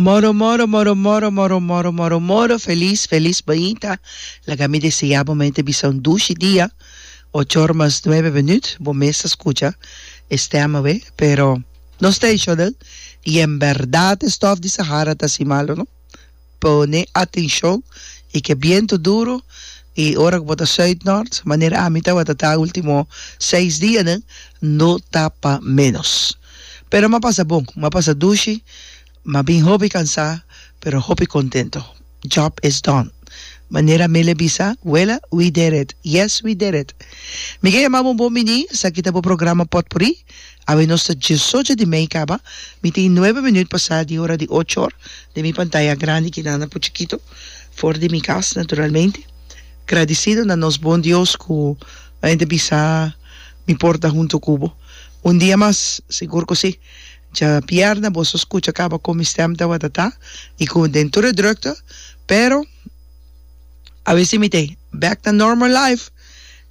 Moro moro moro moro moro moro moro moro feliz feliz bointa laga mi desea bo mente bisa un dushi dia ochor mas nuebe minut bo mes ta scucha e stem awe pero no stay shodel y en berdad e stof di sahara ta si malo no. Pone atencion y ke biento duro y ora ku bo ta suid nort, manera ami tabata ta ultimo seis dianan, no ta pa menos. Pero m'a pasa bon, m'a pasa dushi, m'a bin hopi cansa pero hopi contento. Job is done. Manera Mele bisa, Wela, we did it. Yes, we did it. Mi ke yama bo un bon mini, esaki ta bo programa Potpuri. Awe nos ta diesocho di mei kaba, mi tin nuebe minut pa sa di ora di ocho or den mi pantaya grandi kina na puchikito for di mi kas naturalmente. Gradisido na nos bon Dios ku enta bisa mi por ta hunto ku bo un dia mas, sigur ku si. Dja pierna boso skucha kaba kon mi stèm ta watatá i ku den tur e drukte, pero awe si mi t'e bèk na normal life,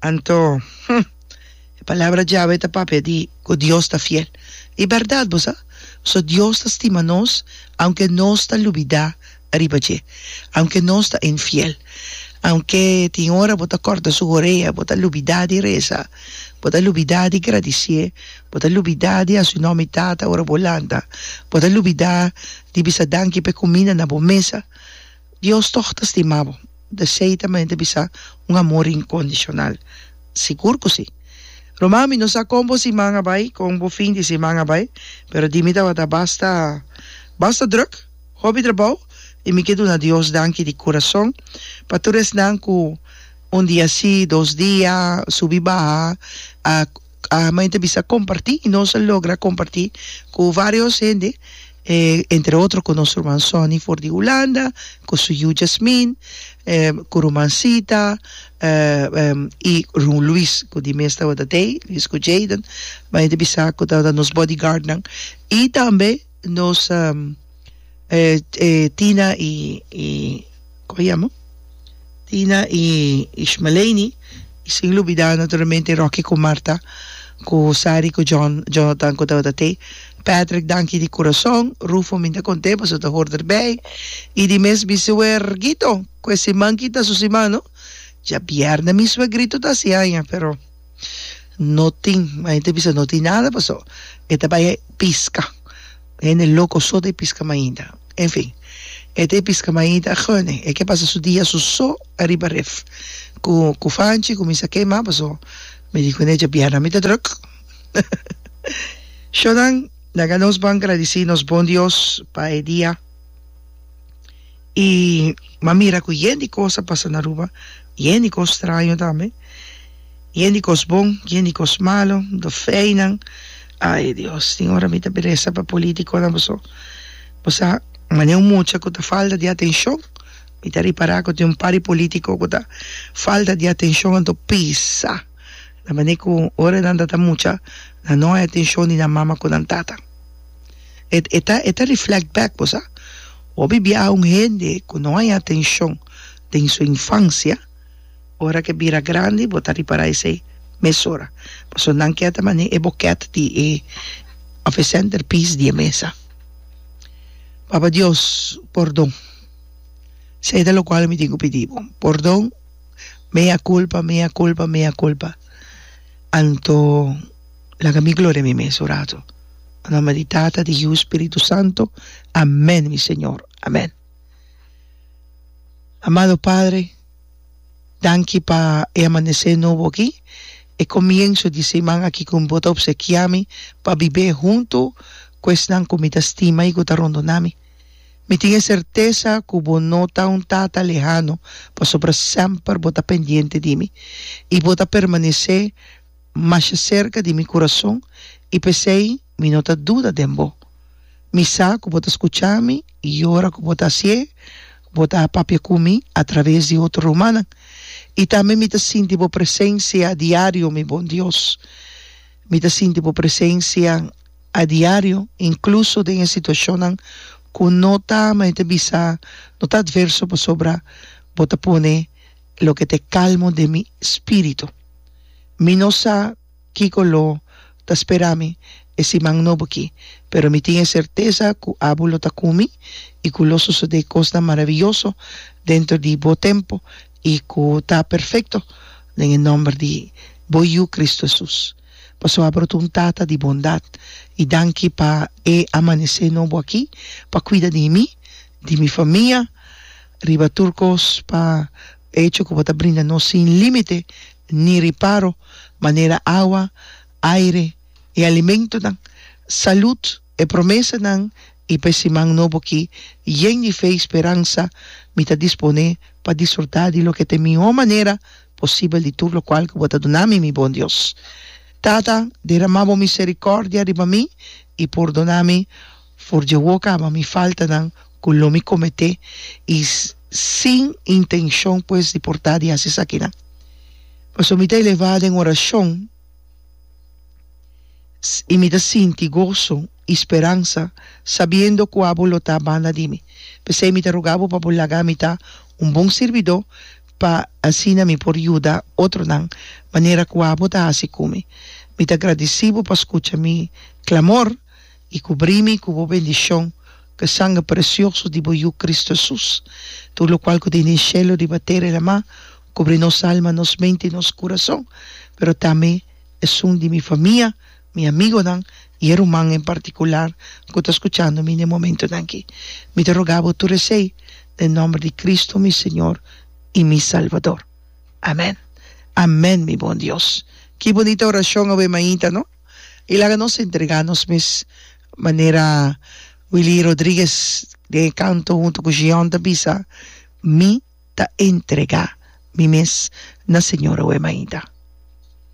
anto, hm. E palabra djawe ta papia di ku Dios ta fiel. I bèrdat bo sa? So, Dios ta stima nos aunke nos ta lubidá riba dje, aunke nos ta infiel, aunke tin ora bo ta kòrta su orea, bo ta lubidá di resa, bo ta lubidá di gradisié, bo ta lubidá di hasi un nòmi Tata ora bo lanta, bo ta lubidá di bisa danki pa e kuminda na bo mesa. Dios tòg ta stima bo. Desei ta mente bisa un amor inkondishonal? Sigur ku sí! Ruman, mi no sa kon bo siman a bai, kon bo fin di siman a bai, pero di mi tabata basta basta drùk, hopi trabou, i mi ke duna Dios danki di kurason pa tur esnan ku un dia sí, dos dia, subi baha, a Main ta bisa comparti y nos a logra comparti cu varios hende entre otro cu nos ruman Sonny for di Hulanda cu su yu Jasmin cu ruman Sita y run Luis cu di mes tabata dey Luis cu Jayden main ta bisa cu tabata nos bodyguardnan y tambe nos Tina y como a yama Tina y Ishmaleini y sin lubida naturalmente Rocky cu Marta cu Sari cu John Jonathan cu tabata te Patrick danki di curazon Rufo mi ta content pasobra ta hoor der bay y di mes mi suerguito cu e siman kita su siman no diabièrnè mi suerguito ta haci aña pero. no tin mas hende ta bisa no tin nada paso e ta bai piska hende loco so ta piska mainta enfin e ta piska mainta agoene e ke pasa su dia su so ariba ref cu cu fanchi cuminsa kema paso mi di cu ney dja bianan mi ta druk sho nan laga nos ban gradici nos bon dios pa e dia I m'a mira ku yen di kos a pasa na Aruba, yen di kos straño tambe, yen di kos bon, yen di kos malu, do feinan, ai Dios, tin ora mi ta beresa pa politikonan boso, bo sa, manera un mucha ku ta falta di atenshon, mi ta ripará ku tin un par di politiko ku ta falta di atenshon anto pisa na manera ku ora nan ta ta mucha nan no hay atenshon di nan mama ku nan tatan. E e ta e ta reflect back bo sa hopi biaha un hende ku no haña atenshon den su infansia ora ke bira grandi bo ta ripará esei mesora pasobra nan ke a ta manera e bokèt di e òf e senter piece di e mesa Papa Dios pordon esei ta lokual mi tin ku pidi bo pordon mea culpa mea culpa mea culpa anto. laga mi gloria mi mes un rato na nomber di tata di hiu spiritu santo amen mi señor amen amado padre danki pa e amanece nobo aki e comienzo di siman aki cu bo ta obsekia mi pa bibe hunto cu esnan cu mi ta stima y cu ta rondona mi mi tin e certeza cu bo no ta un tata lehano pasobra semper bo ta pendiente di mi y bo ta permanece masha serka di mi kurason i p'esei mi no ta duda den bo. Mi sa ku bo ta skucha mi i ora ku bo ta hasi e, bo ta a papia ku mi atraves di otro rumannan. I tambe mi ta sinti bo presensia diario, mi bon Dios. Mi ta sinti bo presensia a diario, inkluso den e situashonnan ku no ta, m'a inta bisa, no ta atverso pasobra bo ta pone. loke t'e kalmo den mi spiritu. Mi no sa kiko lo ta spera mi e siman nobo ki, pero mi tin e sertesa ku Abu lo ta ku mi i ku lo sosodé kosnan maravioso dentro di bo tempu i ku ta perfekto den e nòmber di bo Yu Kristu Hesus. Paso Abu lo ta un tata di bondat i danki pa e amanesé nobo aki pa kuida di mi di mi famia riba tur kos pa hecho ku bo ta brinda nos sin límite ni riparo manera awa, aire, e alimentonan, salud, e promesanan i pa e siman nobo aki yen di fe i speransa mi ta disponé pa disfrutá di loke ta e mihó manera posibel di tur lokual ku bo ta duna mi, mi bon Dios. Tata, deramá bo miserikòrdia riba mi i purdoná mi For dje wok ama mi faltanan ku lo mi kometé i sin intenshon pues di por ta di hasi esakinan. Pasobra mi ta elevá den orashon i mi ta sinti goso i speransa sabiendo ku abo lo ta banda di mi. P'esei mi ta rugá bo pa bo laga mi ta un bon sirbidó pa asina mi por yuda otronan manera ku abo ta hasi ku mi. Mi ta gradisí bo pa skucha mi klamor I kubrí mi ku bo bendishon, ku sanger presioso di bo Yu Kristu Hesus, tur lokual ku ta den shelu riba tera i lamá, kubri nos alma, nos mente i nos kurason, pero tambe esun di mi famia, mi amigonan i e ruman en partikular ku ta skuchando mi na e momentunan akí. Mi ta rogá bo tur esei den nòmber di Kristu, mi Señor i mi Salvador. Amèn. Amèn, mi bon Dios. Ki bunita orashon awe mainta, no? I laga nos entregá nos mes manera Willie Rodriguez den e kanto huntu ku Shion ta bisa, Mi ta entregá mi mes na Señor Awema Ainda.